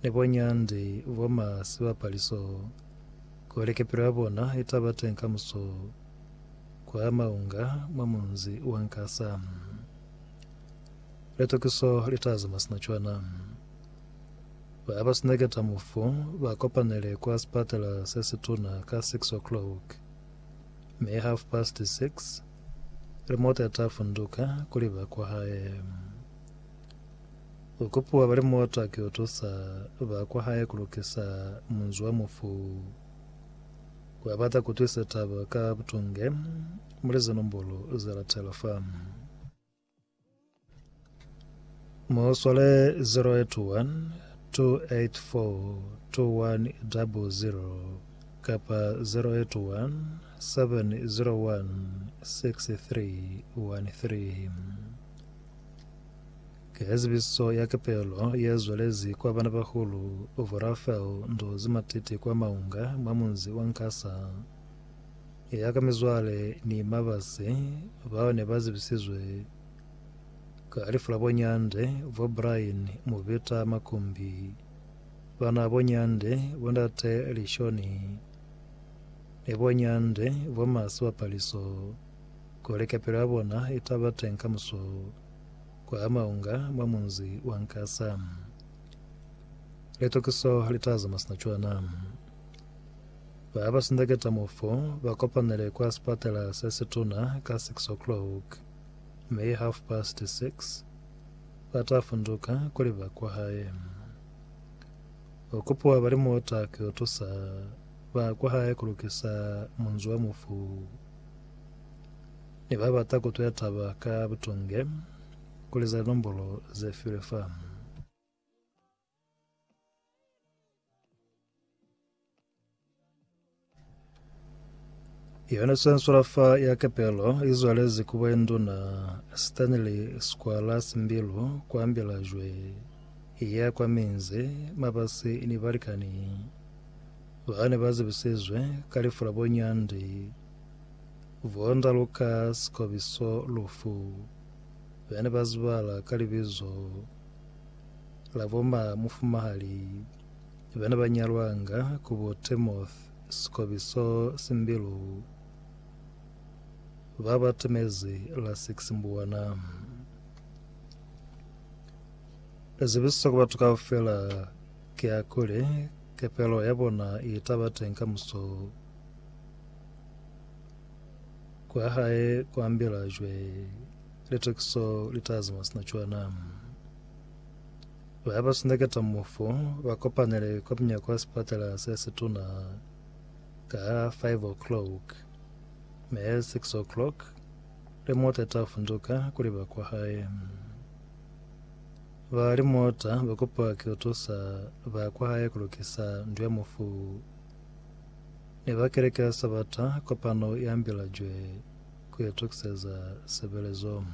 Ni boñandi bo ma sibapaliso kuli kepelo ya bona itaba teng kamuso kwa maunga mwa munzi wa Nkasa. Litokiso li ta zama sina cwana. Ba ba suneketa mufu ba kopanele kwa sipatala se situna ka 6 o'clock, mi half past 6 limota ita funduka kuli ba kwahae. U kopiwa bali muotwa ki utusa ba kwa hae ku lukisa munzi wa mufu. Wa bata ku twisa taba ka butunge muli ze nombolo ze latela fa. Mu swale 0812842100 kapa 0817016313. Ki ezibiso ya kepelo ye zwelezi kwa banabahulu bo Rafael Ndozi Matete kwa Maunga mwa munzi wa Nkasa. Eya ka mizwale ni mabasi bao ne ba zibisizwe ka lifu la bo Nyande, bo Brian Mubita Makumbi, bana bo Nyande, bo Ndate Lishoni, ni bo Nyande, bo Masiwa Paliso. Kuli kapelo ya bona i ta ba teñi kamuso kwa maunga mwa munzi wa Nkasa, litokiso li ta zama sina cwana. Ba ba sindeketa mo fo ba kopanele kwa sipatela se situna ka 6 o'clock, mi half past 6 ba ta funduka kuli ba kwa hae. U kupiwa ba limota ki yo tusa ba kwa hae ku lukisa munzi wa mufu. Ne ba bata ku tuya taba ka butunge ku liza linombolo ze filwe fa. Yona swanswala fa ya kapelo i zwalezi ku bwainduna Stanley Squala Simbilu kwa Mbilajwe, i ya kwa minzi mabasi ni balikani Ba ne ba zibisizwe ka lifu la bo Nyandi, bo Ndaluka, Sikobiso, Lufu, be ne ba zibala ka libizo la bo ma mufumahali be ne ba nyalwanga ku bo Temoth, Sikobiso, Simbilu, ba ba temezi la six Mbuwana. Zibiso ku batu kaufela. Ki hakuli, kepelo ya bona i ta ba teñi kamuso kwa Hae kwa ambila cwe, litokiso li ta zama sina cwana. Ba ba suneketa mufu ba kopanele kwa munyako wa sipatela se situna ka 5 o'clock, mi 6 o'clock, limota i ta funduka kuli ba kwa Hae. Ba limota ba kopiwa ki kutusa ba kwahae kulukisa ndu ya mufu ni ba keleke ya Sabata kopano i ambilajwe ku itokiseza sebelezo.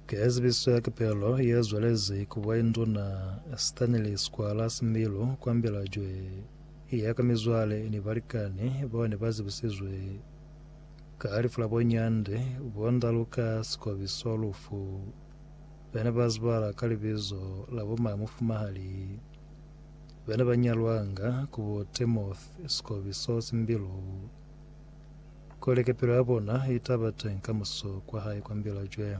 Kezibiso ya Kipelo ye zwelezi ku Bwainduna Stanley Squala Similu ku ambilajwe i ya ka mizwale ni balikani bao ne ba zibisizwe Ka lifu la bo Nyande, bo Ndaluka, Sikobiso, Lufu, bene ba zibala ka libizo la bo Mayo Mufumahali, bene ba nyalwanga ku bo Temoth, Sikobiso, Simbilu, kuli kepelo ya bona i ta ba teng ka muso kwa hae kwa Mbilajwe.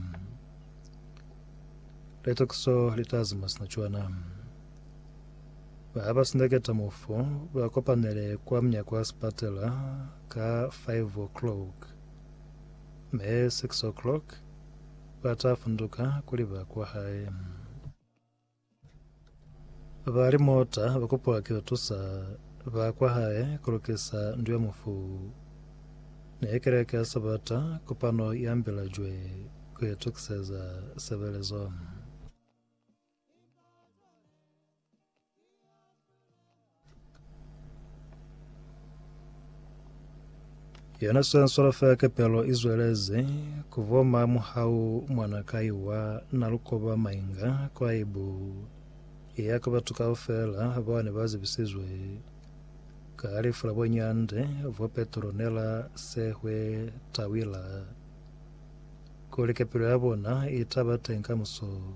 Litokiso li ta zima sina cwana. Ba ba si na keta-mufu ba kopanele kwa munyako wa sipatela ka 5 o'clock, me 6 o'clock ba ta funduka kuli ba kwa hae. Ba limota ba kupiwa ki tusa ba kwa hae ku lukisa ndu ya mufu. Ne keleke ya Sabata kopano ya mbila jwe ku itukiseza sebelezo. Yona swenswalo fela kepelo i zwelezi ku voma muhau mwana kai wa na lukoba mainga kwa ibu iya ka batu kaufela bao ne ba zibisizwe ka lifu la bonyande vo Petronella Sehwe Tawila kuli kepelo ya bona i taba teng kamuso